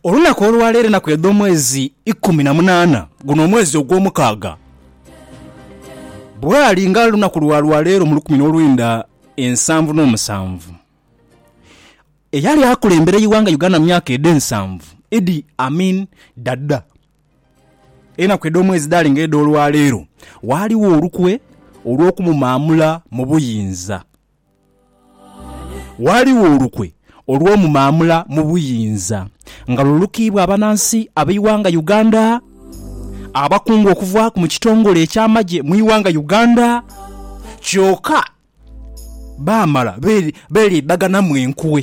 Olunaku olwa leero enaku edh'omwezi ikumi na munaana, guno omwezi ogw'omukaaga. Bwali nga lunaku lwa lwa leero mu lukumi n'olwenda ensanvu n'omusanvu, eyali akulembera eighanga Uganda mu myaka edho ensanvu, Idi Amin Dada. Enaku edh'omwezi dhali nga edh'olwaleero, waaliwo olukwe olw'okumumaamula mu buyinza. Ghaligho olukwe olw'omu maamula mu buyinza nga lulukiibwa abanansi ab'eighanga Uganda, abakungu okuva mu kitongole eky'amagye mu ighanga Uganda kyoka baamala beeriibaganamu enkwe.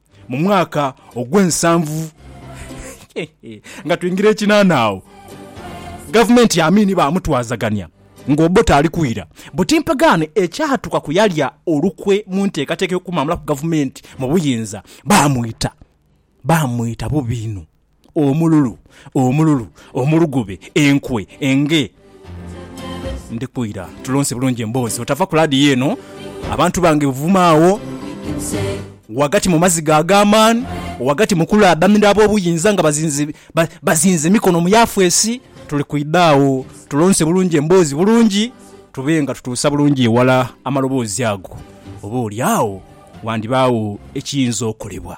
Mu mwaka ogw'ensanvu nga twingira ekinaana agho Gavumenti ya Amin baamutwazagania nga Obote ali kwira buti mpagaano ekyatuuka ku yalya olukwe mu nteekateeka ey'okumwamulaku Gavumenti mu buyinza. Baamwita, baamwita bubi inho. Omululu, omululu, omulugube, enkwe, enge. Ndhiku ira tulonse bulungi emboozi otava ku laadiyo eno abantu bange buvuma agho ghagati mu maziga ag'amaani, ghagati mu kulaabanira ab'obuyinza nga bazinze ba, bazinze emikono mu Yafesi. Tuli kwidha agho tulonse bulungi emboozi bulungi tube nga tutuusa bulungi eghala amaloboozi ago. Oba oli agho wandibaagho ekiyinza okolebwa.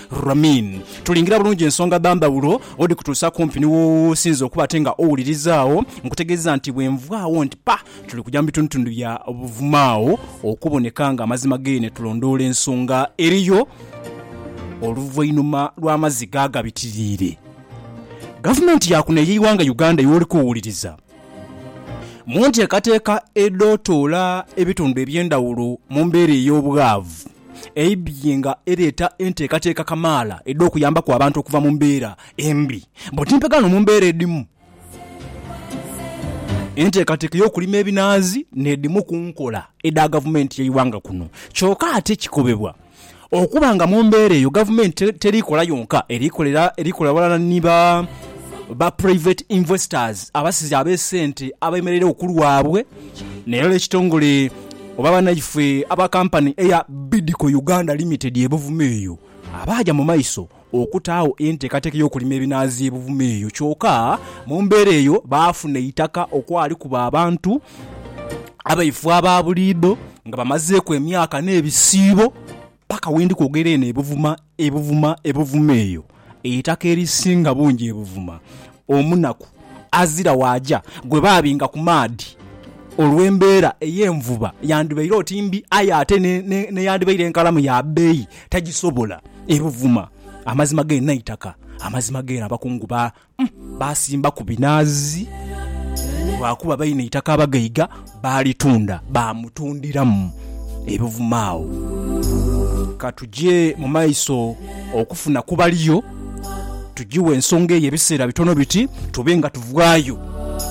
Ramin. Tulingira bulungi ensonga dha ndhawulo odhikutuusa kumpi ni w'osinze okuba ate nga owuliriza agho. Nkutegeezezza nti bwe nvaagho nti pa, tuli kugya mu bitundutundu bya Buvuma agho okuboneka ng'amazima g'eyo ne tulondoola ensonga eriyo. Oluvainhuma lw'amaziga agabitiriire, Gavumenti ya kuno ey'eighanga Uganda y'oli kuwuliriza, mu nteekateeka edh'otoola ebitundu eby'endhawulo mu mbeera ey'obwavu, Eibye nga ereeta enteekateeka kamaala edh'okuyambaku abantu okuva mu mbeera embi bbo timpegha no mu mbeera edhimu. Enteekateeka ey'okulima ebinaazi n'edhimu ku nkola edha gavumenti y'eighanga kuno kyoka ate kikobebwa okuba nga mu mbeera eyo gavumenti teri kola yonka eri kola ghalala ni ba Private Investors abasizi ab'esente abemereiregho ku lwabwe. N'era ekitongole oba banaifwe aba kampani eya Bidco Uganda Limited e Buvuma eyo abaaja mu maiso okutaagho enteekateeka ey'okulima ebinaazi e Buvuma eyo kyoka mu mbeera eyo baafuna eitaka okwali kuba abantu abaifo aba buliidho nga bamazeeku emyaka n'ebisiibo. Paka we ndikwogerera eno ebuvuma, ebuvuma, ebuvuma eyo eitaka erisinga bungi ebuvuma, omunaku azira waaja gwe baabinga ku maadhi olw'embeera ey'envuba. Yandibaire oti mbi, aye ate n'eyandibaire enkalamu ya bbeeyi tagisobola. Ebuvuma, amazima geena eitaka, amazima geena abakungu Baasimbaku binaazi, lwakuba baina eitaka abagaiga baalitunda baamutundiramu ebivuma. Agho ka tuje mu maiso okufuna ku baliyo, tujiwe ensonga eyo ebiseera bitono biti tube nga tuvaayo.